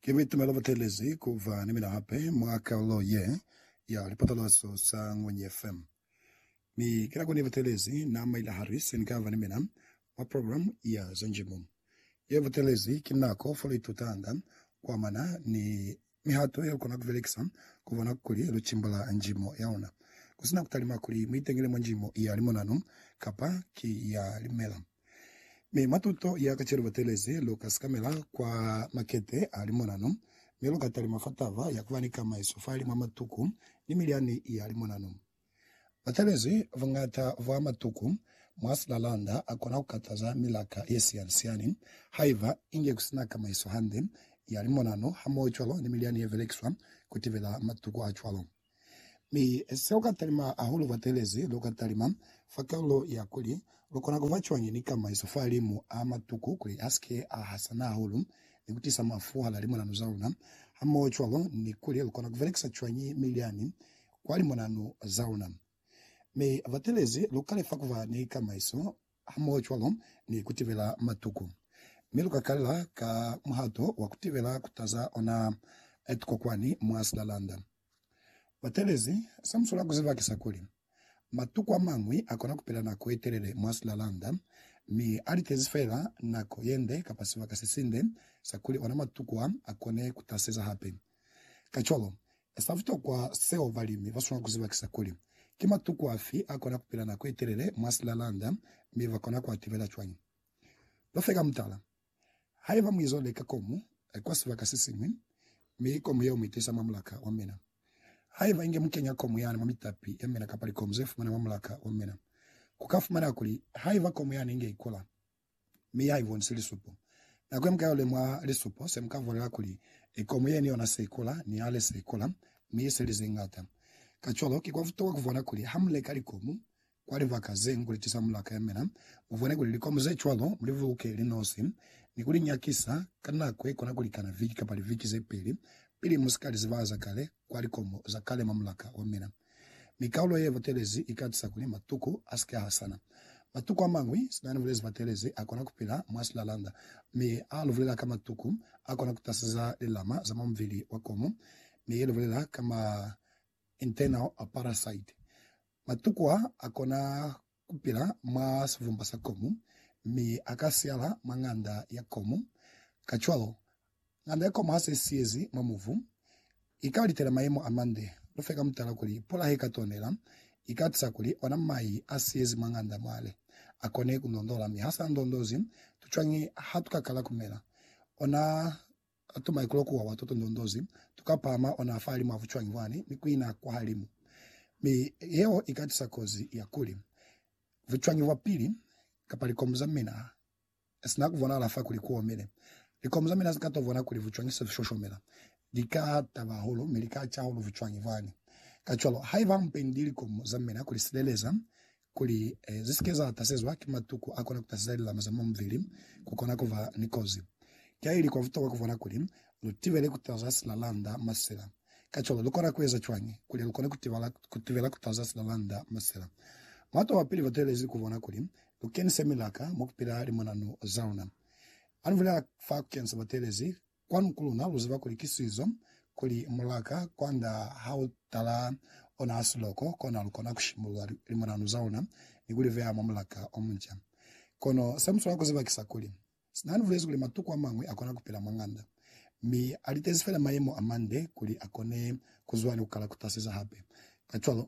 Ki bitumelo butelezi kuba ni mina hape mwa kalulo ye ya lipatalazo za Ngwenyi FM. Mi ki nako nibutelezi na maila hali se nikaba ni mina mwa program ya za njimo. Ye butelezi ki nako fo luitutanga kuamana ni Mihato yelukona kubelekisa kubona kuli lucimbula njimo yaona kusina kutalima kuli muitengele mwa njimo ya limonano kapa ki ya limela. Mi mwa tuto ya kacenu batelezi luka sikamela kwa makete a limonano, mi luka talima fa taba ya kuba ni kamaiso fahali mwa matuku ni milyani ya limonano. Ba talezwi buñata bwa matuku mwa silalanda a kona ku kataza milaka ye siyani-siyani haiba inge ku si na kamaiso hande ya limonano hamohocwalo ni milyani ye belekiswa ku tibela matuku a cwalo. Mi se lu ka talima hahulu fa talezi, lu ka talima fa kalulo ya kuli lu kona ku ba cwañi ni kamaiso fahalimu a matuku kuli a si ke a hasana hahulu ni ku tisa mafu hala limonano za luna hamohocwalo ni kuli lu kona ku belekisa cwañi milyani kwa limonanu za luna. Mi batelezi luka lefa kuba ni kamaiso hamoho cwalo ni kutibela matuku. Mi luka kalela ka muhato wa kutibela kutaza ona tuko kwani mwa silalanda. Batelezi sa muswela kuziba kisa kuli, matuku amañwi akona kupila nako yetelele mwa silalanda, mi alitezi feela nako yende kapa sibaka sesinde sakuli ona matuku a akone kutaseza hape. Kacwalo, sa butokwa seo balimi ba swanela ku ziba ki sa kuli, Ki matuku afi a kona ku pila nako ye telele mwa silalanda, mi ba kona ku a tibela cwañi? Ba fe ka mutala. Haiba mu izo leka komu kwa sibaka se siñwi, mi komu yeo mu itiisa mwa mulaka wa mina, haiba inge mu kenya komu yani mwa mitapi ya mina kapa likomu ze fumana mwa mulaka wa mina, ku ka fumaneha kuli haiba komu yani inge ikula, mi ha i bonisi lisupo. Nako ye mu ka yo lemuha lisupo, se mu ka vulela kuli, i komu ye ni yona se i kula, ni hale se i kula, mi i se li ze ñata. Kacwalo, ki kwa butokwa ku bona kuli ha mu leka likomu kwa libaka ze ngu liti sa mulaka ya mina, mu bone kuli likomu ze cwalo mu li buluke li nosi, ni ku li nyakisa ka nako ye kona ku likana viki kapa liviki ze peli, pili mu si ka li zibahaza kale. kwa likomo za kale mwa mulaka wa mina, mi kaulo ye batelezi i ka tisa kuli matuku a si ke a hasana. Matuku a mañwi, sina ni bulezi batelezi, a kona ku pila mwa silalanda, mi ha lu bulela ka matuku, a kona ku taseza lilama za mwa mubili wa komo, mi ye lu bulela ka ma internal parasite. Matuku a, a kona ku pila mwa sivumba sa komu, mi a ka siala mwa ng'anda ya komu. Kacwalo, ng'anda ya komu ha se siyezi mwa mubu, i ka litela mayemo a mande. Lu fe ka mutala kuli, pula he ka tonela, i ka tisa kuli ona mai a siyezi mwa ng'anda mwale a kone ku ndondola. Mi ha sa ndondozi, tu cwañi ha tu ka kala ku mela ona Ha tu maikulo kuwa wa tuto ndondozi, tu ka pahama ona fa limu ha bucwangi bwani ni kuina kwa halimu. Mi yeo i ka tisa kozi ya kuli, bucwangi bwa pili, kapa likomu za mina, ha si na ku bonahala fa kuli ku omile. Likomu za mina si ka to bona kuli bucwangi se bu shoshomela, li ka taba hahulu mi li ka ca hahulu bucwangi bwani. Kacwalo, haiba mu pendile likomu za mina ku li sileleza, kuli eh, zi si ke za tasezwa ki matuku a kona ku taseza lilama za mwa mubili, ku kona ku ba ni kozi. Ki ili kwa butokwa ku bona kuli lu tibele ku taza silalanda masela. Kacwalo, lu kona ku eza cwañi kuli lu kone ku tibala, ku tibela ku taza silalanda masela? Mwato wa pili ba twelezi ku bona kuli lu kenise milaka mwa ku pila limonanu za luna. Ha ni bulela fa ku kenisa batwelezi Kwanu ku luna lu ziba kuli ki sizo, kuli mulaka kwanda ha u tala ona hasi loko, kona lu kona ku shimulula limonanu za luna ni ku li veha mwa mulaka o munca. Kono se mu swanela ku ziba ki sa kuli, sina ni bulezi kuli matuku a mañwi a kona ku pila mwa ng'anda, mi a litezi fela mayemo a mande kuli a kone ku zwa ni ku kala ku tasiza hape, kacwalo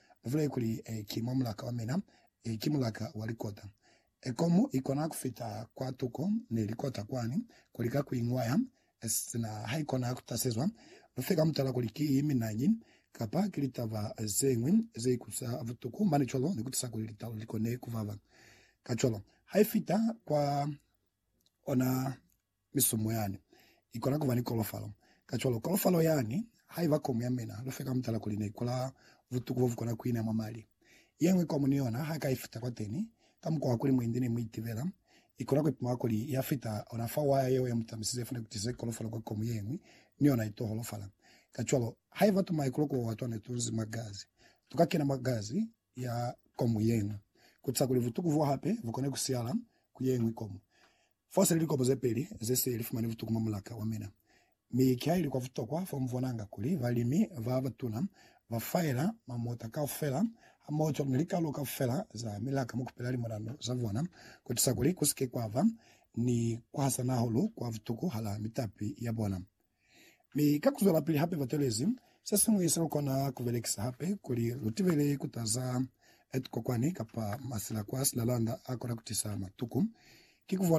Muvulele kuli, Ki mwa mulaka wa mina, ki mulaka wa likota. Ekomu ikona kufita kwa tuko ni likota kwani, ku lika ku iñwaya, sina haikona kutasezwa. Lufe ka mutala kuli ki minañi, kapa ki litaba zeñwi ze ikutwisa butuku mane cwalo, ni kutisa kuli litalo likone kubaba. Kacwalo, haifita kwa ona Misumo yani ikona kuba ni kolofalo. Kacwalo, kolofalo yani haiba komu ya mina, lufe ka mutala kuli neikola butuku bobukona kuina mwa mali. Yeñwi komu ni yona ha ka ifita kwateni, ka mukwa wa kuli muindi ne muitibela, ikona kuipima kuli ya fita ona fa waya yeo ya mutamisize ifune kutize kolofalo kwa komu yeñwi, ni yona ito holofala. Kacwalo, haiba tumaikulo kuo watwa netunzi mwa gazi, tuka kena mwa gazi ya komu yeñwi, kutisa kuli butuku bo hape bukone kusiala ku yeñwi komu. Fosele likopo ze peli ze se li fumani butuku mwa mulaka wa mina, mi ki ha ili kwa butokwa fa mu bonanga kuli balimi ba batuna ba faela mamota kaufela hamoho ni likalo kaufela za milaka mu kupela limulano za bona ku tusa kuli ku si ke kwa ba ni ku hasana hahulu kwa butuku hala mitapi ya bona. Mi ka ku zwelapili hape ba twelezi se siñwi se lu kona ku belekisa hape kuli lu tibele ku taza tukokwani kapa masila kwa silalanda a kona ku tisa matuku, ki ku bona